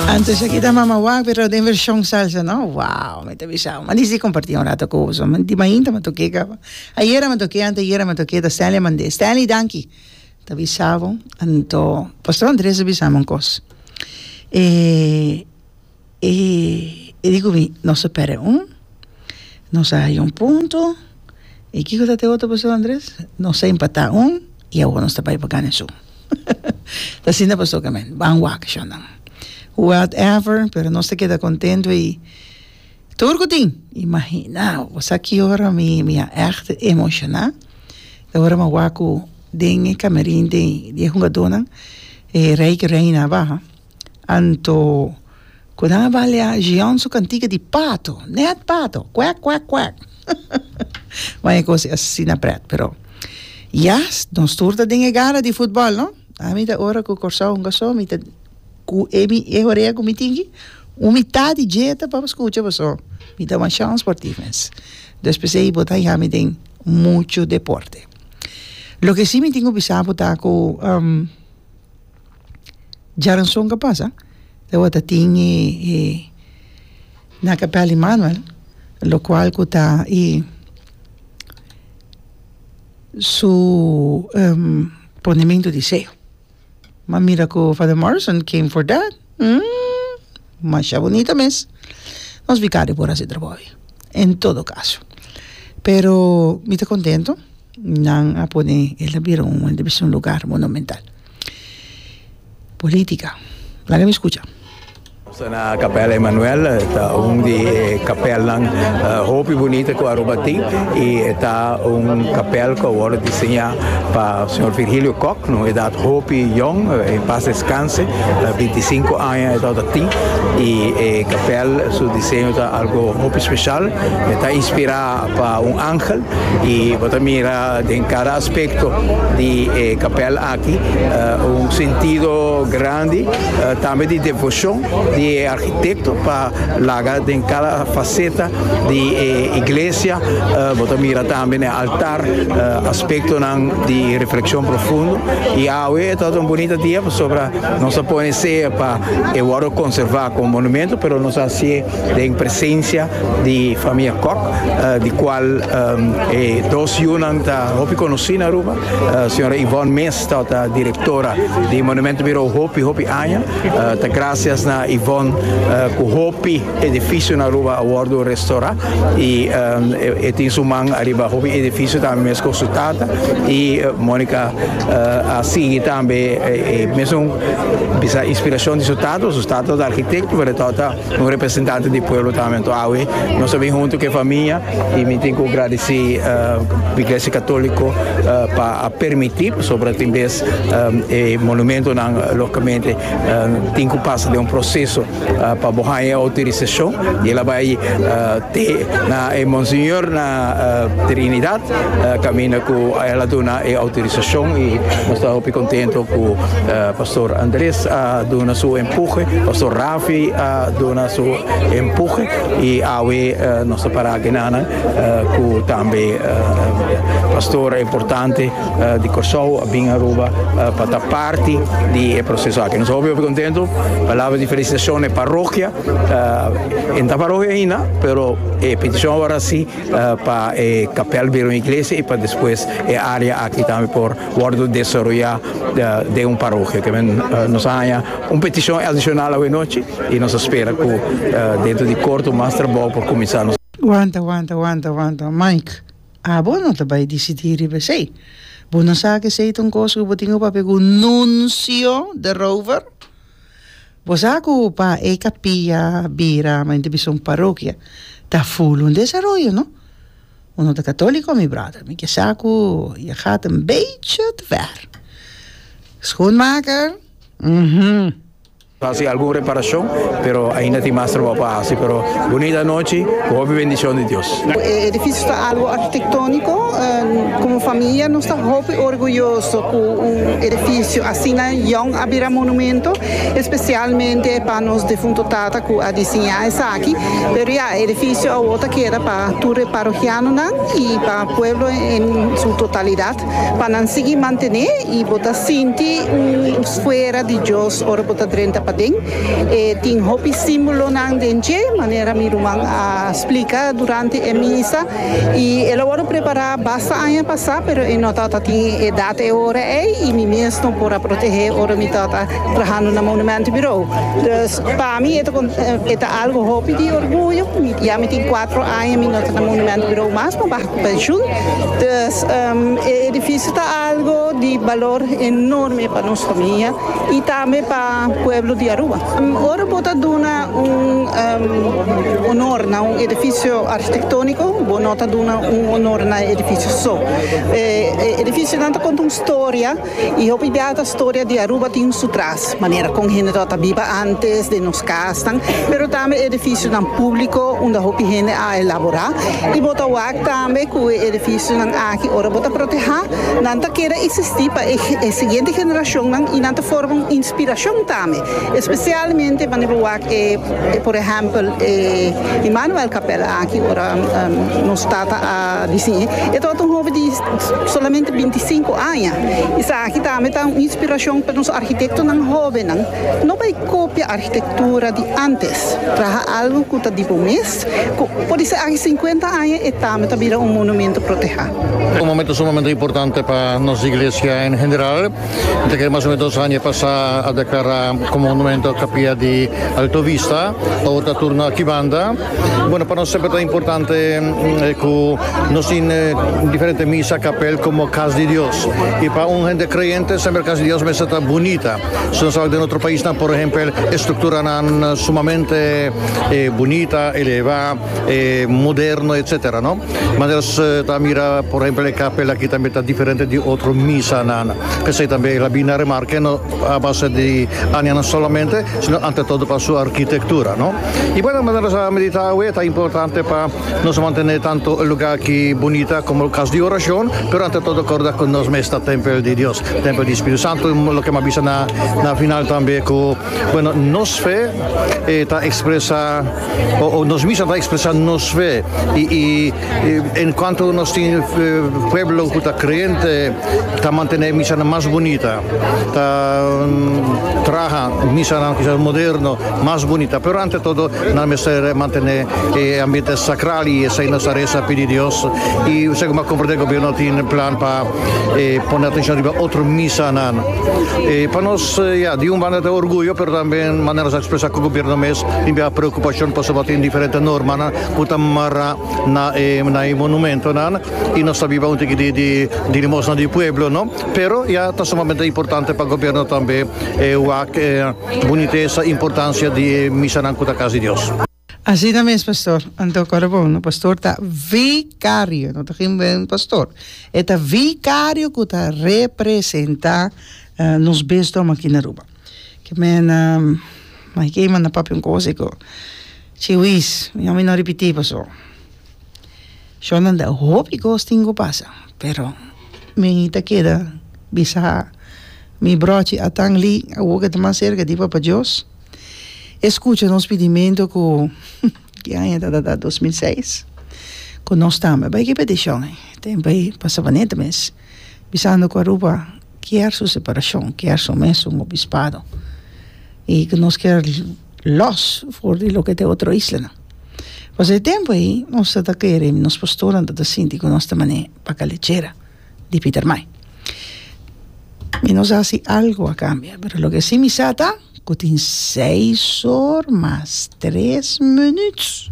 Antes aki ta Mama Wak pero den version salsa no wow mi ta bisa m'a disi comparti un rato cu boso di mainta mi toke caba ayera mi toke ante ayera mi toke ta Stanley Mande Stanley danki ta bisa bo anto Pastor Andre a bisa mi un cos e e e di cu mi nos a perde un nos a haya un punto. Y kico ta te otro paso Andres? Nos a empata un y awor nos ta bay pa gana su. Ta asina paso Carmen. Ban wak shonnan. Whatever, pero nos ta keda contento y tur cu tin. Imagina, bo sa ki ora mi mi a echt emociona? Ta ora mi a wak cu den e camerin den di e hungadornan e rey cu reina a baha. Anto, ku nan a balia Jean su kantika di pato, nèt pato, kwèk kwèk kwèk, wan e kos asina prèt. Pero, yas, nos tur ta den e gara di futbòl, no? Ami ta ora ku Kòrsou hunga so, mi ta ku e mi e horea ku mi tin aki, un mitat di dje ta pa skucha boso. Mi ta masha sportivo mes. Entonces p'esei bo ta haña mi den muchu deporte. Loke si mi tin ku bisa bo ta ku Jaranson ka pasa tabata tin e e na kapel Emanuel lokual ku ta i su ponementu di seyo ma mira ku Father Morrison came for that masha bunita mes nos bikario por hasi trabou awe en todo kaso pero mi ta kontento nan a pone el a bira un un lugar monumental. Política. Laga mi scucha. Sta na Capella Emmanuel, e ta un di e capelnan hopi bunita cu Aruba tin y e ta un capel cu a worde diseña pa Señor Virgilio Kok, na un edad hopi yong, en paz descanse, binti i sinku aña e tabata tin y e capel su diseño ta algo hopi special, e ta inspira. A pa un angel y bo ta mira den cada aspecto di e capel aki un sentido grandi tambe di devocion di e architecto pa laga den cada faceta di e iglesia, bo ta mira tambe n'e altar aspectonan di reflexion profundo y awe e ta un bunita dia pasobra nos a pone sea pa e wordo conserva como monumento pero nos a haci'e den presencia di famia Kok di cual e dos yunan ta hopi conoci na Aruba, señora Yvonne Mees ta ota directora di Monumento Bureau hopi hopi aña, ta gracias na Yvonne cu hopi edificio na Aruba a wordo restora y e tin su man ariba hopi edificio tambe mes cu su tata y Monica a sigui tambe e mesun bisa inspiracion di su tata, su tata ta architecto pero e ta ota Un representante di pueblo ta awe awe nos a bin hunto ke famia y mi tin ku gradisi iglesia katoliko pa a permiti pasobra tin bes e monumentonan lokamente tin ku pasa den un proseso pa bo haña e outorisashon y el a bai te na e monseñor na trinidad kaminda ku el a duna e outorisashon y nos ta hopi kontento ku pastor Andres a duna su empuje pastor Raaf. Fi a duna su empuje y awe nos ta para genanan cu tambe pastor importante di Corsou a bin Aruba pa ta parti di e proceso aki. Nos a hopi hopi contento. Palabra di felicitacion na e parrokia. E no ta parrokia aina pero e peticion awor a si pa e capel bira un iglesia y pa despues e area aki tambe por Wordo desaroyá den un parokia. Te men nos a haña un petishon adishonal awe nochi i nos a spera ku dentro di korto mas trabou por kuminsá. Wanta, wanta, wanta, wanta, Mike. Abo no ta bai disidí riba esei. Bo no sa ku esei ta un kos ku bo tin ku papia ku un nuncio di rover? Bo sa ku pa e kapia bira, mayormente bisa un parokia, ta full un desaroyo, no? Bo no ta católico, mi brother? Mi ke sa cu je gaat een beetje te ver. Schoenmaker? Uhmm. Hasi algun reparacion, pero ainda tin mas trabao pa hasi, pero bunita anochi cu hopi bendicion di Dios. E edificio ta algo arquitectonico, como familia nos ta hopi orguyoso cu un edificio asina yong a bira monumento, especialmente pa nos defunto tata cu a disiña esaki. Pero ya, e edifisio awor ta keda pa tur e parohianonan i pa pueblo en su totalidat pa nan sigui mantené i bo ta sinti un sfera di Dios ora bo ta drenta paden. E tin hopi símbolonan den dje, manera mi ruman a splika durante e misa, i el a wòrdu prepará basta aña pasá, pero e no tabata tin e edat e ora ei i mi mes no por a protehé ora mi tabata trahando na Monumentenbureau. Pa mi e ta algo hopi di orguyo. Ya mi tin cuatro aña mi no ta na Monumento Bureau mas, mi baha cu pensioen. Dus e edificio ta algo di balor enorme pa nos famia y tambe pa pueblo di Aruba. Ora bo ta duna un honor na un edificio architectonico, bo no ta duna un honor na e edificio so. E edificionan ta conta un storia. Y hopi bia ta storia di Aruba tin su tras, manera con hende ta ta biba antes, den nos casnan, pero tambe edificionan publico unda hopi hende a elabora. Y bo ta wak tambe cu e edificionan aki ora bo ta proteha, nan ta keda existi pa e e siguiente generacionnan y nan ta forma un inspiracion tambe, especialmente wanneer bo wak e e por ehempel e Immanuel Capella aki ora nos tata a diciñe. E tabata un hopi di. Solamente binti i sinku aña. Esaki tambe ta un inspirashon pa nos arkitektonan hóbennan. No bai kopia arkitektura di ántes. Traha algu ku ta di bo mes, ku por di seaki sinkuenta aña e tambe ta bira un monumentu protehá. Un momentu sumamente importante pa nos iglesia en general. Ta kere mas o menos dos aña pasá a deklará komo monumentu kapia di Alto Vista. Awor ta turno akí banda. Bueno, pa nos semper ta importante cu nos tin diferente misa, capel como Cas di Dios. Y pa un hende creyente semper Cas di Dios mester ta bunita. Si nos tabata den otro paisnan, por ehempel, e structuranan sumamente bunita, eleva, moderno, etcetera, no? Manera nos ta mira, por ehempel, e capel aki tambe ta diferente di otro misanan. P'esei tambe el a bini na remarke no a base di añanan solamente, sino ante todo pa su arquitectura, no? Y bueno, manera nos a medita awe, ta importante pa nos mantene tanto e lugar ki bunita como cas di oracion, pero ante todo corda cu nos mes ta tempel di Dios, tempel di Spiritu Santo. Y loke mi a bisa na na final tambe cu, bueno, nos fe ta expresa o nos misa ta expresa nos fe y y. Y en cuanto nos tin pueblo cu ta creente ta mantene misanan mas bunita, ta traha misanan kisas moderno mas bunita, pero ante todo nan mester mantene e ambiente sacral y esai nos ta reza pidi Dios. Y segun bo a comprende gobierno tin plan pa pone atencion riba otro misanan. Pa nos ya di un banda ta orguyo pero tambe manera nos a expresa cu gobierno mes tin bira preocupacion pasobra tin diferente normanan. ku ta mara na e na e monumentonan i nos ta biba un tiki di di di limosna di pueblo no pero ya ta sumamente importante pa gobierno tambe e wak e bunitesa importancia di e misanan ku ta kas di Dios. Asina mes pastor, anto kòrda bon no pastor ta vikario no ta gin buen pastor e ta vikario ku ta representa nos bisdom aki na Aruba, kimen na mai ke manda papi un kos i ku. Chiwis, mi nomi no ripití paso shonda ta hopi kos tin ku pasa pero mi ta keda bisa mi brochi a tan li awo ke ta mas serka di Papa Dios e skucha nos pidimentu ku ki aña tatata dos mil seis ku nos tambe bai ki petishon ei ten bai pa Sabaneta mes bisando ku Aruba kier su separashon kier su mes un obispado i ku nos kier. los for di loke ta e otro islanan. Pas e tempu ei nos ta ta kere, nos pastornan ta ta sinti ku nos ta manera e paka lechera di Pietermaai. Mi no sa si algu a kambia, pero loke si mi sa ta ku tin seis or mas tres minüt.